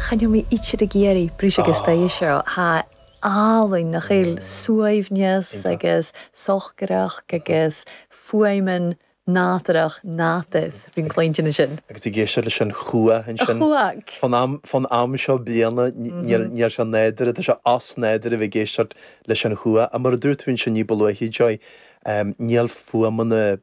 Chaitheadh mé oíche ag iarraidh brúisc agus tae seo. Tá álainn nach bhfuil? Suaimhneas agus socracht agus fuaimeanna nádúrach native. Bhí ag cluinstin ansin. Agus ag éisteacht leis an chuach ansin. Chuach! Fán am seo bliana níl sé nádúrtha, tá sé osnádúrtha a bheith ag éisteacht leis an chuach. Ach mar a dúirt tú ansin ní ba luaithe, Joy, níl fuaimeanna.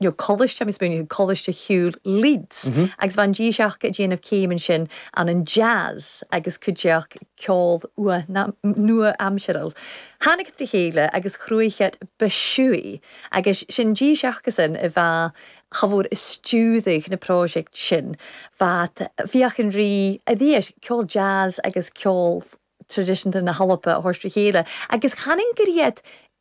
nó Coláiste, agus bunaithe ag Coláiste Ciùil Leeds, agus bha an dithis aca a' déanamh céim ansin ann an jazz agus cuideachd ceol nua-aimsearil. Thàinig iad ri chèile agus chruthaich iad ba shúí agus 's e an dithis acasan a bha chomhar a stiùireadh na pròiseict sin. Bheat bhíodh an rí a bhí air ceol jazz agus ceol traidiseanta na h-Alba a thoirt ri chèile agus chanainn gur iad